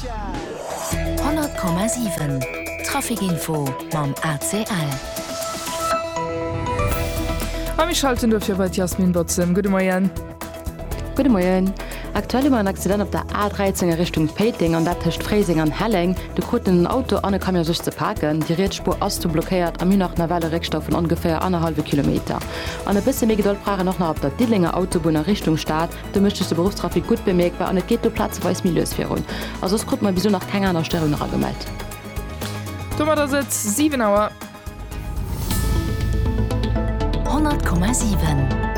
100,7 Trafic Info mam ACL. A mir schalten dofir bei d'Yasmin Bozem. Gudde Moien. Gudde Moien. Aktuell hu mer en Accident op der A13 a Richtung Péiteng, an dat tëscht Fréiseng an Helleng. Do kruten en Auto an e Camion sech ze paken. Déi riets Spuer ass do blockéiert a mir hunn nach nawell e Réckstau vun ongeféier annerhallwe Kilometer. An e bësse méi Gedold brauch een och nach op der Diddelenger Autobunn a Richtung Stad. Do mécht sech de Beruffstrafic gutt bemierkbar an et geet do plazeweis méi lues virun. A soss krut mer bis elo nach keng aner Störung eragemellt. Domat ass et 7 Auer. 100,7.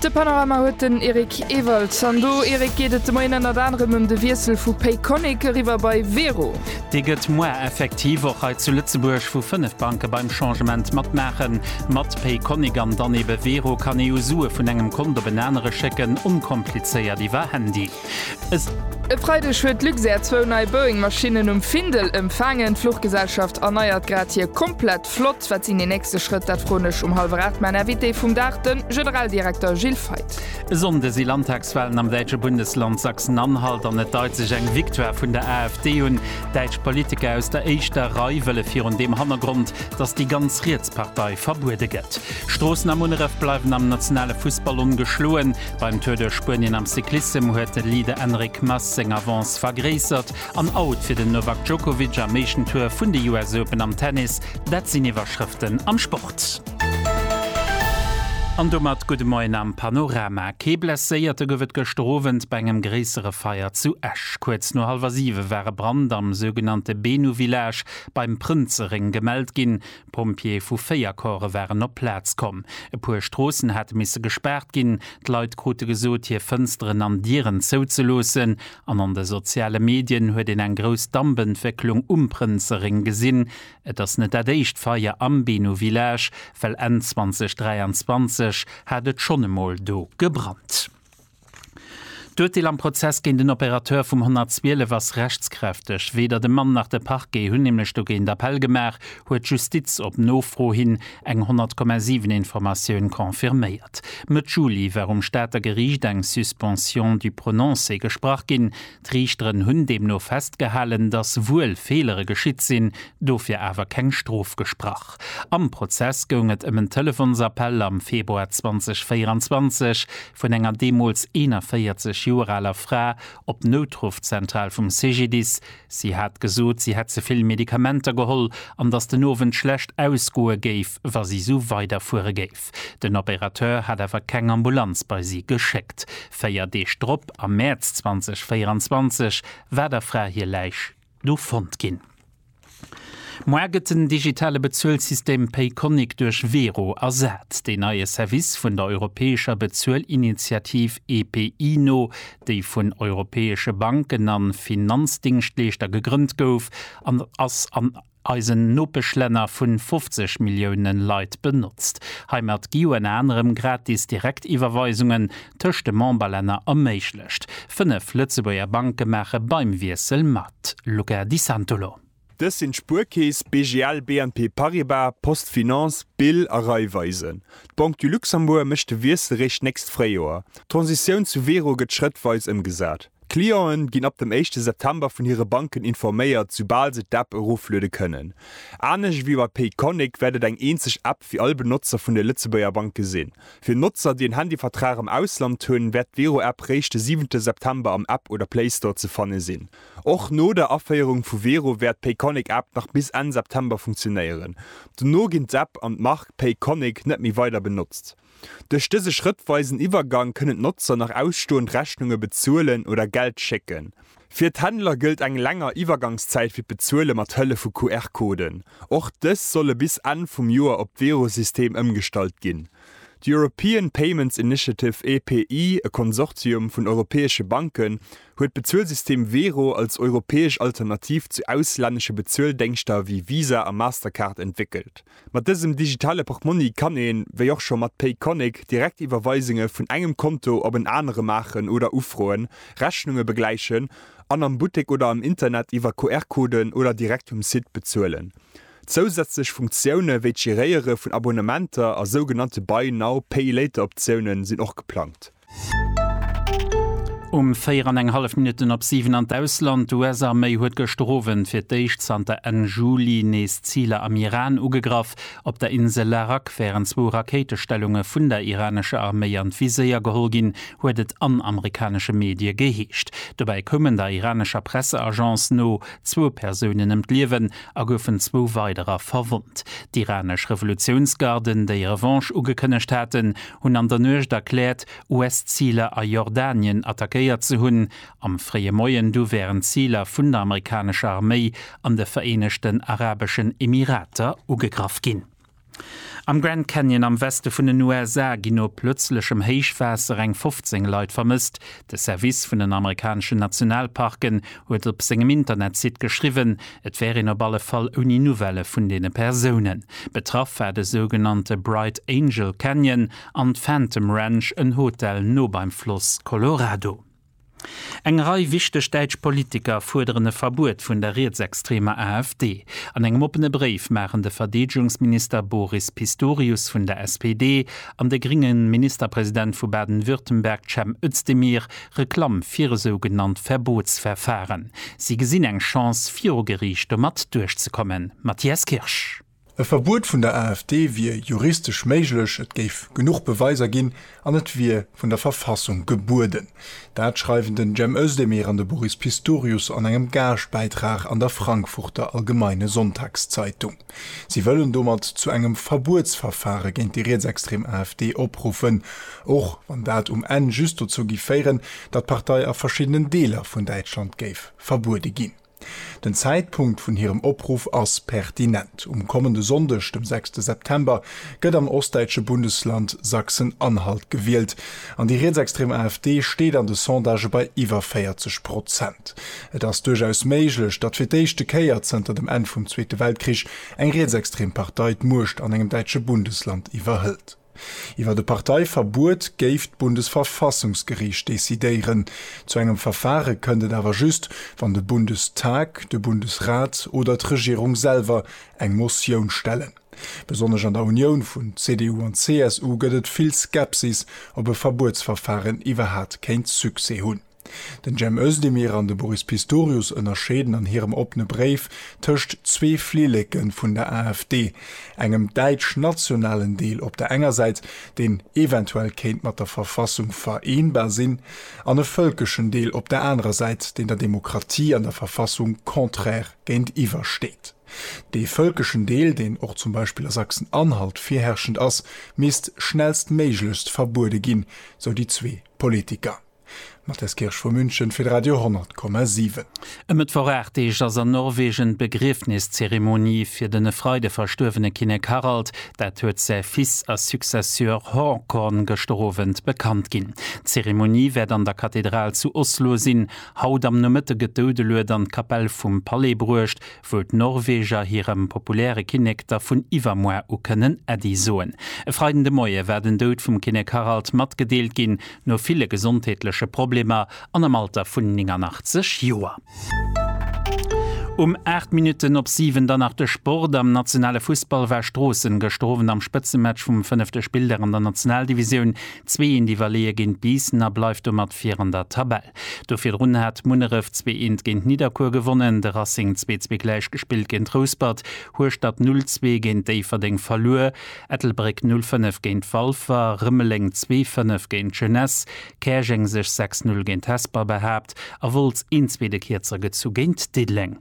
De Panorama huet den Eric Ewald. An do, Eric, geet et de Moien ënnert anerem ëm de Wiessel vu Payconiq eriwwer bei Wero. Déi gëtt moar effektiv, och hei zu Lëtzebuerg, wou 5 Banke beim Changement matmaachen. Mat Payconiq an dann ebe Wero kann ee jo Sue vun engem Kont op en anere schécken, onkomplizéiert iwwer Handy. S, E Freideg huet d'Luxair zwou nei Boeing-Maschinnen um Findel empfaangen. D'Fluchgesellschaft erneiert grad hir komplett Flott. Wat sinn déi nächste Schrëtt? Dat froen ech um hallwer 8 mäin Invité vum Dag, de Generaldirekter Gilles Feith. E Sonnde si Landtagswalen am däitsche Bundesland Sachsen-Anhalt an et deit sech eng Victoire vun der AfD un. Däitsch Politiker aus der éischter Rei wëlle virun deem Hannergrond, datt déi ganz riets Partei verbuede gëtt. Stroossen a Munneref bleiwen am nationale Fussball ongeschloen. Beim Tour duerch Spuenien am Cyclissem huet de Leader Enric Mas seng Avance vergréissert. An out fir den Novak Djokovic am éischten Tour vun de US Open am Tennis, dat sinn Iwwerschrëften am Sport. An domat gudde Moien am Panorama. Kee Blesséierte gouf et gëschter Owend bei engem gréissere Feier zu Esch. Kuerz no hallwer siwe war e Brand am sougenannte Benu-Village beim Prënzeréng gemellt ginn. D'Pompjeeë vu véier Corpse waren op d'Plaz komm. E puer Stroossen hate misse gespaart ginn. D'Leit krute gesot, hir Fënsteren an Dieren zouzeloossen. An an de soziale Medien huet een eng grouss Dampentwécklung um Prënzerréng gesinn. Et ass net dat éischt Feier am Beno Village, well Enn 2023 hat et schonn emol do gebrannt. D'Urteel am Prozess géint den Opérateur vum 112 ass rechtskräfteg. Weder de Mann nach de Parquet hunn nämlech dogéint Appell gemaach, huet d'Justiz op Nofro hin eng 100,7 Informatioun confirméiert. Mëtt Juli war um Stater Geriicht eng Suspension du prononcé gesprach ginn. D'Riichteren hunn deemno festgehalen, datt wuel Feelere geschitt sinn, dofir awer keng Strof gesprach. Am Prozess goung et ëm en Telefonsappell am Februar 2024 vun enger deemools 41 Joer aler Fra op d'Noutruffzentral vum CGDIS. Si hat gesot, si hätt ze vill Medikamenter geholl an datt den Owend schlecht ausgoe géif, wa si sou weiderfuere géif. Kierf. Den Opérateur hat awer keng Ambulanz bei si geschéckt. Véier Deeg drop, am Mäerz 2024, war der Fra hir Läich do fonnt ginn. Moar gëtt den digitale Bezuelsystem Payconiq duerch Wero ersat. Deen neie Service vun der europäescher Bezuelinitiativ EPI no, déi vun europäesche Banken a Finanzdéngschtleeschter gegrënnt gouf, ass an. eisen Nopeschlänner vun 50 Millioune Leit benotzt. Heimat gi un anerem gratis Direktiwwerweisungen tëscht de Memberlänner erméiglecht. Fënnef Lëtzebuerger Banke maache beim Wiessel mat. Luca Di Santolo. Dës sinn d'Spuerkeess, BGL, BNP Paribas, PostFinance, Bill a Raiffeisen. D'Banque du Luxembourg mécht de Wiessel réischt d'nächst Fréijoer. D'Transitioun zu Wero gëtt schrëttweis ëmgesat. D'Cliente ginn ab dem éischte September vun hire Banken informéiert, soubal se d'App erofluede kënnen. Anescht ewéi bei Payconiq wäert et eng eenzeg App fir all Benotzer vun de Lëtzebuerger Banke sinn. Fir Notzer, déi en Handyvertrag am Ausland hunn, wäert d'Wero-App réischt de siwente September am App oder Playstore ze fanne sinn. Och no der Aféierung vu Wero wäert d'Payconiq-App nach bis Enn September funktionéieren. Dono ginn d'App an d'Mark Payconiq net méi weider benotzt. Duerch dëse schrëttweisen Iwwergang kënnen d'Notzer nach ausstoend Rechnunge bezuelen oder Geld schécken. Fir d'Händler gëllt eng länger Iwwergangszäit fir d'Bezuele mat Hëllef vu QR-Coden. Och dës solle bis Enn vum Joer op d'Wero-System ëmgestallt ginn. D'European Payments Initiative, EPI, e Konsortium vun europäesche Banken, huet d'Bezuelsystem Wero als europäesch Alternativ zu auslännesche Bezueldéngschter wéi Visa a Mastercard entwéckelt. Mat dësem digitale Portmonni kann een, wéi och scho mat Payconiq, direkt Iwwerweisunge vun engem Konto op en anere maachen oder Ufroen, Rechnunge begläichen an am Buttek oder am Internet iwwer QR-Coden oder direkt um Site bezuelen. Zousätzlech Funktioune wéi d'Geréiere vun Abonnementer a sougenannte Buy-Now-Pay-Later-Optioune sinn och geplangt. Um 4 an eng hallef Minutten op 7 an d'Ausland, D'US-Arméi huet gëschter Owend fir d'éischt zanter Enn Juli nees Ziler am Iran ugegraff. Op der Insel Larak wären zwou Rakéitestellunge vun der iranescher Arméi an d'Viséier geholl ginn, huet et an amerikanesche Medie geheescht. Dobäi koumen der iranescher Presseagence no zwou Persounen ëm d'Liewen a goufen zwou weiderer verwonnt. D'iranesch Revolutiounsgarden, déi Revanche ugekënnegt haten, hunn an der Nuecht erkläert, US-Ziler a Jordanien attackéiert ze hunn. Am fréie Moien du wären d'Ziler vun der amerikanescher Arméi an de Vereenegten Arabeschen Emirater ugegraff ginn. Am Grand Canyon am Weste vun den USA ginn no plötzlechem Héichwaasser eng 15 Leit vermësst, De Service vun den amerikaneschen Nationalparken huet op sengem Internetsite geschriwwen, et wär een op alle Fall ouni Nouvellë vun deene Persounen. Betraff war de sougenannte Bright Angel Canyon an d'Phantom Ranch, en Hotel no beim Floss Colorado. Eng Rei wichteg däitsch Politiker fuerderen e Verbuet vun der rietsextremer AfD. An engem oppene Bréif maachen de Verdeedegungsminister Boris Pistorius vun der SPD An de grénge Ministerpresident vu Baden-Württemberg Cem Özdemir Reklamm fir esou genannt Verbotsverfahren. Si gesinn eng Chance viru Geriicht domat duerchzekommen. Matthias Kirsch. E Verbuet vun der AfD wier juristesch méiglech, et géif genuch Beweiser ginn an et wier vun der Verfassung gebueden. Dat schreiwen den Cem Özdemir an de Boris Pistorius an engem Gaaschtbäitrag an der Frankfurter Allgemeine Sonntagszeitung. Si wëllen domat zu engem Verbuetsverfare géint déi rietsextrem AfD opruffen, och wann dat um Enn just dozou géif féieren, datt d'Partei a verschiddenen Deeler vun Däitschland géif verbuede ginn. Den Zäitpunkt vun hirem Opruff ass pertinent, Um kommende Sonndeg, dem sechste September, gëtt am ostdäitsche Bundesland Sachsen-Anhalt gewielt. An déi rietsextrem AfD steet an de Sondagë bei iwwer 40 Prozent. Et ass duerchaus méiglech, datt fir d'éischte Kéier zënter dem Enn vum Zweete Weltkrich eng rietsextrem Partei d'Muecht an engem däitsche Bundesland iwwerhëlt. Iwwer e Parteiverbuet géif d'Bundesverfassungsgeriicht decidéieren. Zu engem Verfare kënnt et awer just, wann de Bundestag, de Bundesrat oder d'Regierung selwer eng Motioun stellen. Besonnesch an der Unioun vun CDU an CSU gëtt et vill Skepsis, ob e Verbuetsverfaren iwwerhat kéint Succès hunn. Den Cem Özdemir an de Boris Pistorius ënnerscheeden an hirem oppene Bréif tëscht zwee Flilleke vun der AfD, engem däitsch-nationalen Deel op der enger Säit, deen eventuell kéint mat der Verfassung vereenbar sinn, an e vëlkeschen Deel op der anerer Säit, deen der Demokratie an der Verfassung contraire géintiwwer steet. Dee völkeschen Deel, deen och zum Beispill a Sachsen-Anhalt virherrschend ass, misst schnellstméiglechst verbuede ginn, sou déi zwee Politiker. Matthias Kirsch vu München fir de Radio 10,7. E Mëttwoch 8 Deeg ass an Norwegen d'Begriefniszeremonie fir den e Freide verstuerwene Kinnek Harald. Dat huet säi Fils a Successeur Haakon gëschter Owend bekannt ginn. D'Zeremonie wäert an der Kathedral zu Oslo sinn. Haut am Nomëtte gëtt d'Doudelued an d'Kapell vum Palais bruecht, wou d'Norweger hirem populäre Kinnek da vun iwwermuer u kënnen Äddi soen. E Freiden de Moie war den Doud vum Kinnek Harald matgedeelt ginn, no ville gesondheetleche Problemer an am Alter vun 89 Joer. Um 8 Minutten op 7 dann nach de Sport, Am nationale Fussball war Stroossen gëschter Owend am Spëtzematch vum fënnefte Spilldag an der Nationaldivisioun zwee een iwwerleeë géint Biissen a bleift domat vir an der Tabell. Do virdrun hat Munneref zwee eent géint Nidderkuer gewonnen, de Racing zwee zwee gläich gespillt géint Rouspert, Hueschtert null zwee géint Déifferdeng verluer, Ettelbréck null fënnef géint Walfer, Rëmeleng zwee fënnef géint d'Jeunesse, Käerjeng sech sechs null géint Hesper behaapt a Wolz een zwee de Kierzer gezu géint Diddeleng.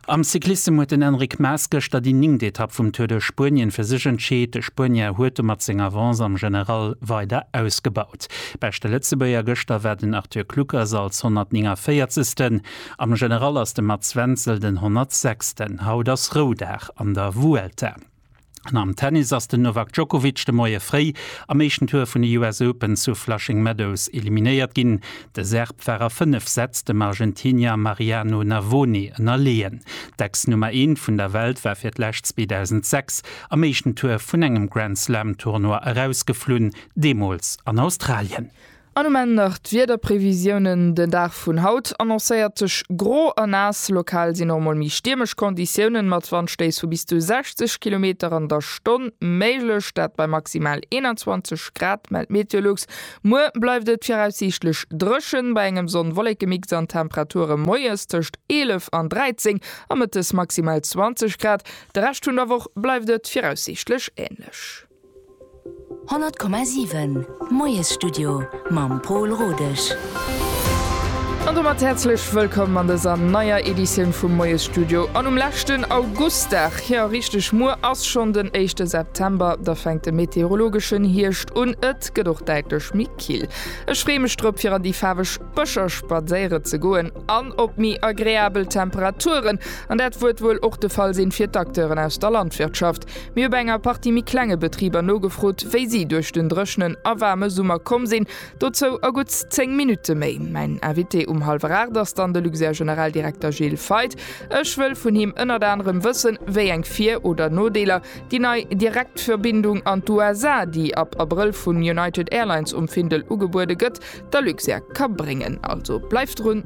Am Cyclissem huet den Enric Mas gëschter déi ningt Etapp vum Tour de Spuenien fir sech entscheet. De Spuenier huet domat seng Avance am General weider ausgebaut. Beschte Lëtzebuerger gëschter war den Arthur Kluckers als 149. Am General ass de Mats Wenzel den 106. Haut ass Roudag an der Vuelta. An am Tennis ass den Novak Djokovic de Moie fréi am éischten Tour vun de US Open zu Flushing Meadows eliminéiert ginn. De Serb war a 5 Sätz dem Argentinier Mariano Navone ënnerleeën. D'Ex-Nummer Eent vun der Welt war fir d'lescht 2006 am éischten Tour vun engem Grand-Slam-Tournoi erausgeflunn, deemools an Australien. An um Enn nach d'Wiederprevisiounen, Den Dag vun haut annoncéiert sech gro a naass, lokal sinn och mol méi stiermesch Konditiounen mat Wandstéiss vu bis zu 60 Kilometer an der Stonn méiglech, dat bei maximal 21 Grad, mellt Meteolux. Muer bleift et viraussiichtlech dréchen, bei engem Sonn-Wollekemix an Temperature moies tëscht 11 an 13 a mëttes maximal 20 Grad. De Rescht vun der Woch bleift et viraussiichtlech änlech. 100,7 Moiesstudio mam Pol Rodesch. An domat häerzlech wëllkomm an dëser neier Editioun vum Moiesstudio an um leschten Augustdag. Jo, richteg, muer ass schonn den éischte September, da fänkt de meteorologeschen Hierscht un. Et gëtt och däitlech méi kill. Ech freeë mech drop, fir an déi faarweg Bëscher spadséiere ze goen an op méi agreabel Temperaturen. An dat wuert wuel och de Fall sinn fir d'Acteuren aus der Landwirtschaft. Mir hu bei enger Partie méi klenge Betriber nogefrot, wéi si duerch den dréchnen a waarme Summer komm sinn. Dozou a gutt 10 Minutte méi. Mäin Invité um hallwer 8 ass dann de Luxair Generaldirekter Gilles Feith. Ech wëll vun him ënnert anerem wëssen, wéi eng Vir oder Nodeeler déi nei Direktverbindung an d'USA, déi ab Abrëll vun United Airlines um Findel ugebuede gëtt, der Luxair ka bréngen. Also bleift drun!